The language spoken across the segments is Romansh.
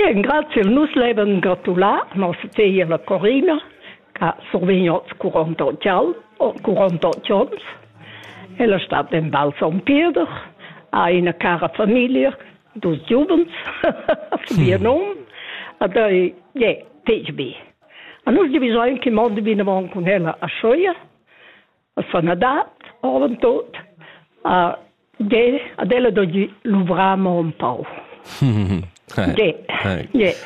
Engraziel, nus levan gratular nossa feglia Corina ch'ha survegniu oz 48 anns, oh, 48 onns. Ella stat en Val Son Pieder, ha ina cara famiglia, dus giuvens, vier num, ed ei je fetg bi. A nus divisein che mondi vinavon cun ella a Schoia. sanadad avantut. Uh, de, ad ella doggi luvramo un pau. De, de.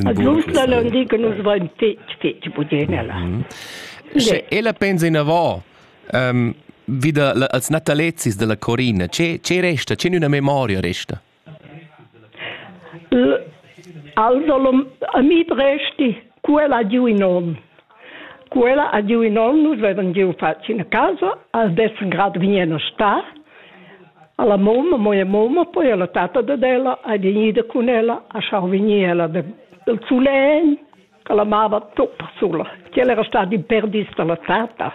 Adult la lundi che nus vain fetg, fetg budenella. Sche ella pensa inavò, um, vida als natalezis della Corina, ce, ce resta, ce una memoria resta? Alsolum amit resti, quella ha giu in onn. Quella ha giu in onn, nus vevan giu fatg ina casa, als dessen grad vien a star. Alla mamma, moia mamma, poi alla tata dad ella ha vegnida cun ella a schau vegnir ella de, del sulegn, che la mava tutta sula. Quella era stata in perdis dalla tata.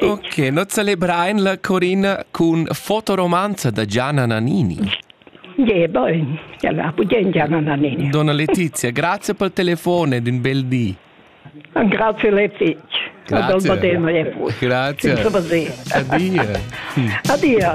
Ok, no celebrain la Corina cun fotoromanza da Gianna Nannini. Je, bön. Ja, la budien Gianna Nannini. Donna Letizia, grazie pel telefone ed un bel di. Grazie Letizia. Grazie. Grazie. Adio. Hm. Adio.